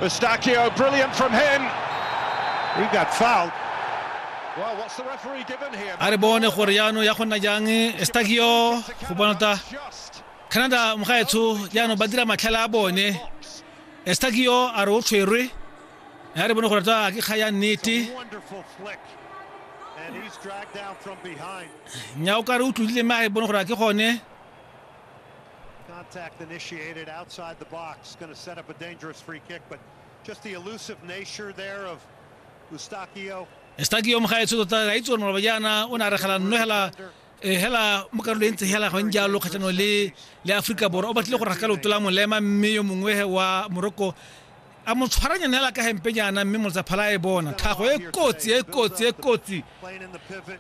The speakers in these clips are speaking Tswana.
Eustachio, brilliant from him. He got fouled. Well, what's the referee given here? a re bone gore jaanong ya go nna jang stagio go bona ta canada mogaetsho jaanong ba dira matlhale a bone stagio a re o tshwerwe ya re bone gore ta ke kga ya nnete nya o ka re o tlodile mme a re bone gore a ke gone Contact initiated outside the box, going to set up a dangerous free kick, but just the elusive nature there of Eustaquio. Eustaquio mo gaetso tota ga itse gore maloba jaana o ne a re gela nno hela eh, hela mo karolo e ntse hela gone jalo kgatlhanong le le aforika borwa o batlile go raga ka leoto la molema mme yo mongwe wa moroko A mo tshwaranyane la ka hempe jaana mme Motsaphala a e bona tlhago e kotsi e kotsi e kotsi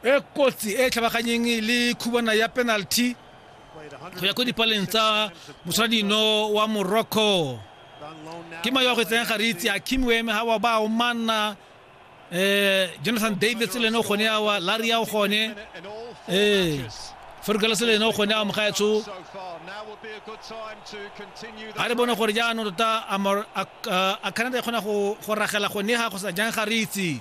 e kotsi e tlhabaganyeng le khubana ya penalty go ya ko dipaleng tsa motshwaradino wa Morocco ke mayo a go etseng ga re itse Akim Weme ha wa ba o manna eh Jonathan Davis le no gone ya wa Larry ya gone eh Ferguson le no gone ya mgaetso a re bone gore jaanong tota a Canada e kgona go ragela gone ga go sa jang ga re itse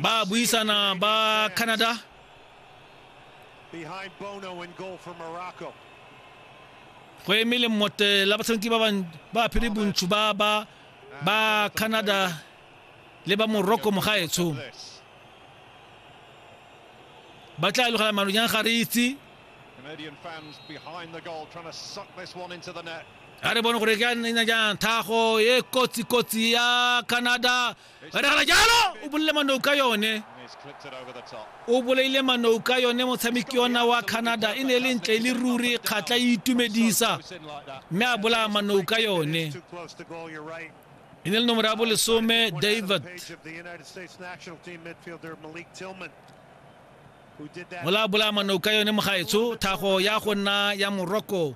ba buisana ba Canada Behind Bono and goal for Morocco. go emele mmote la batshameki ba ban- ba aphiri bontsho ba ba ba canada le ba morocco mogaetsho This. ba tla logela manonyang ga re itse Canadian fans behind the goal trying to suck this one into the net. a re bone gore ke a nna jang thago e kotsi kotsi ya canada re diragala jalo o bolile manou ka yone o bolaile manou ka yone motshameki ona wa canada e ne e le ntle e le ruri kgatla e itumedisa mme a bolaya manou ka yone e ne le nomoro ya bolesome david mola bolaya manou ka yone mogaetsho thago ya go nna ya morocco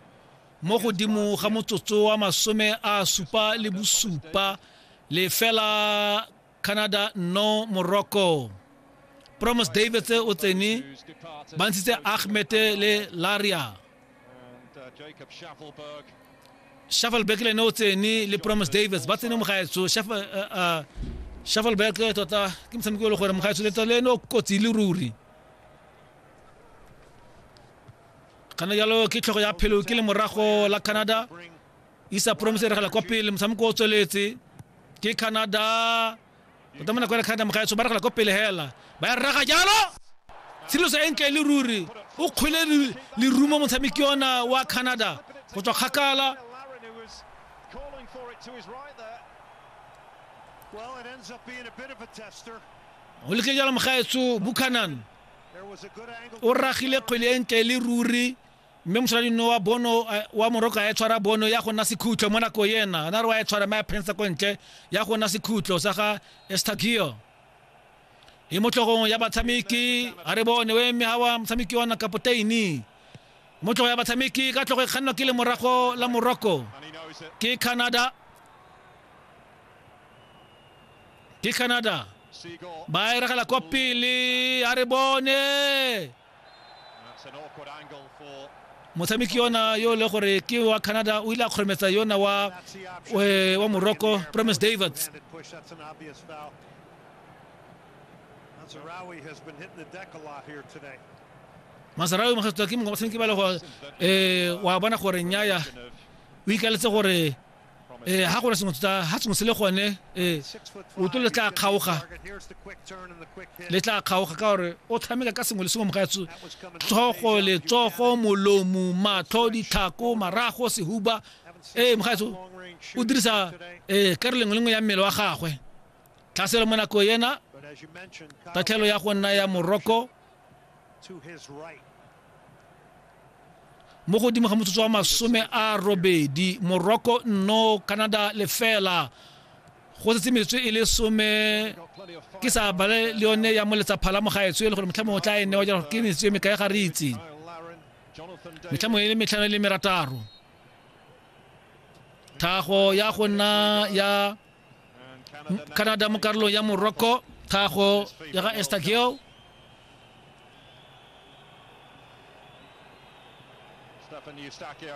mo godimo ga motsotso wa masome a supa le bosupa lefela canada no morocco promus davids o tsene ba ntshitse ahmed le laria shuffleback le ne o tsene le promus davids ba tsene mogaetso shuffleback tota ke motshameko e le gore mogaetso le tota le ne o kotsi le ruri kana jalo ke tlhogo ya phelo ke le morago la canada isa promise e regela kwa pele motshameko o tsweletse ke canada tota mo nako ya canada mogaetso ba regela kwa pele hela ba ya rraga jalo tshiriloso e ntle le ruri o kgwele lerumo motshameki ona wa canada go tswa kgakala o leke jalo mogaetso buchanan o ragile kgwele e ntle e le ruri mme mosadino wa bono eh, wa moroko a e tshwara bono ya go nna sekhutlo mo nako ena na re wa e tshwara mme a phensa ko ntle ya go nna sekhutlo sa ga estagio e mo tlhogong ya batshameki a re bone o eme ga wa motshameki wa nakapoteini mo tlhogo ya batshameki ka tlhogo e kgannwa ke le morago la moroko ke canada ke canada ba eregela kwa pele a re bone motshameki yona yo le gore ke wa canada o ile a kgorometsa yona wa eh, wa morocco promise davids masarawi mogatsoa ke mongwe batshameki ba le go eh, wa bona gore nyaya o ikaletse gore ee ga gona sengwe tota ga sengwe se le gone ee oto le tla kgaoga le tla kgaoga ka gore o tshameka ka sengwe le sengwe mogatso tlhogo letsogo molomo matlho ditlhako marago sehuba ee mogatso o dirisa ee ka re lengwe lengwe ya mmele wa gagwe tlhaselo mo nako yena tatlhelo ya go nna ya moroko mo godimo ga motsotso wa masome a robedi morocco no canada lefela go setse metswe e le some ke sa bale le yone ya moletsa phala mo gaetsho e le gore motlhamo o tla e newa jalo ke metswe me kae ga re itse metlhamo e le metlhano e le merataro thago ya go nna ya canada mo karolong ya morocco tlhago ya ga estageo Stefan Eustachio